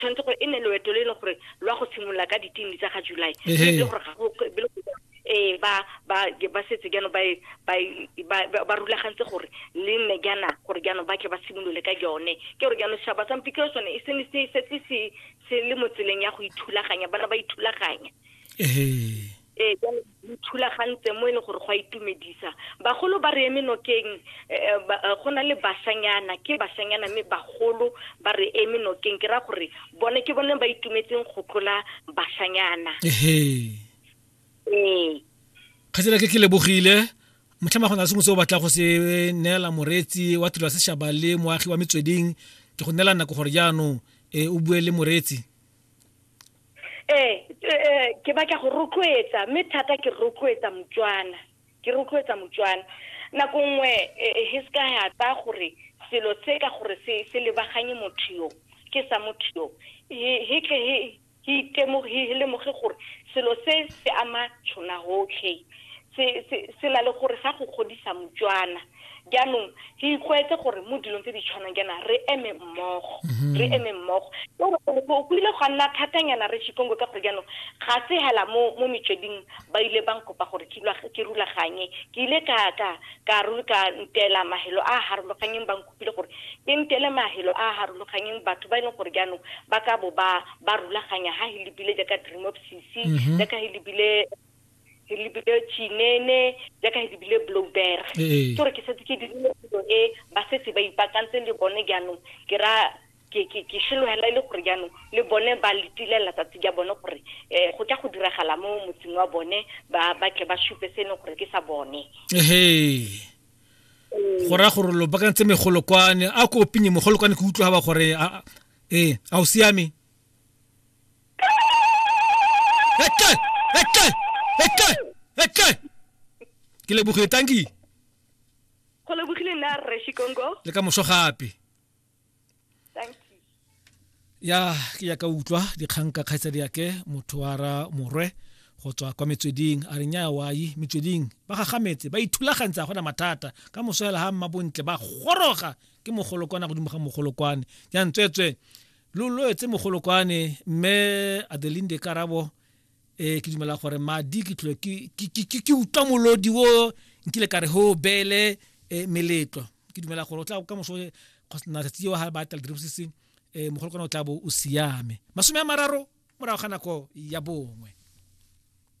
tshwanetse gore e ne loeto le e leng gore lwa go simolola ka ditini tsa ga july le gore ga go eh ba ba ba setse gano ba e, ba e, ba rulagantse gore le nne gana gore gano ba ke ba simolole ka yone ke gore gano shaba sa mpike sone e se se se se le motseleng ya go ithulaganya bana ba ithulaganya eh ee jalo thulagantse mo e leng gore go a itumedisa bagolo ba re eme nokeng eh, eh, go na le basanyana ke basanyana mme bagolo ba re eme nokeng ke ra gore bone ke bone ba itumetseng go tlola basanyana ee kgatsela ke ke lebogile motlhama go na le sengwe se o batla go se neela moreetsi wa tiro ya sešaba le moagi wa metsweding ke go neela nako gore jaanong um o bue le moreetsi ee eh, ke batla go rotloetsa mme thata ke rotloetsa motswana ke rotloetsa motswana nako nngwe eh, he se ka ya tsaya gore selo se ka gore se se lebaganye motho yo ke sa motho yo he tle he he lemoge gore selo se se ama tshona gotlhe se na le gore sa go godisa motswana jaanong ke ikgwetse gore mo dilong tse di tshwanang jaana re eme mmogo mhm. re eme mmogo o kwile go nna thatanyana re chikongo ka gore jaanong ga se hela mo mo metsweding ba ile ba nkopa gore ke rulaganye ke ile ka ka ka ka ntela mahelo a a harologanyeng ba nkopile gore ke ntele mahelo a a harologanyeng batho ba e leng gore jaanong ba ka bo ba ba rulaganya ha he lebile jaaka dream of cc mhm. jaaka he lebile ke lebile chinene jaaka ke lebile blowberg ee. ke gore ke setse ke dirile phelo e ba setse ba ipakantse le bone jaanong ke ra ke šelogela e le gore jaanong le bone ba letilela tsatsi ja bone gore um go tla go diragala mo motseng wa bone ba tle ba supe se e leng gore ke sa bone ee. go raya gore lo bakantse megolokwane a ko opinye mogolokwane ke utlwa ba gore ee a o siame Eke! Eke! Eke! Eke! Ke lebogile tanki. Go lebogile nna Rre Shikongo. Le ka moso gape. ya ke ya ka utlwa dikgang ka kgaitsadi yake motho wa ra morwe go tswa kwa metsweding a re nya wai metsweding ba gagametse ba ithulagantse a gona mathata ka moso hela ga mmabontle ba goroga ke mogolokwana godimo ga mogolokwane ya ntswetswe lo loetse mogolokwane mme adelinde karabo e ke dumela gore madi ke tlile ke utlwa molodi o nkile ka re ho bele e, meletlo ke dumela gore o tla ka moso natsatsi eo ga ba tla lediribo se se e, mogolokwane o tla bo o siame masome a mararo morago ga nako ya bongwe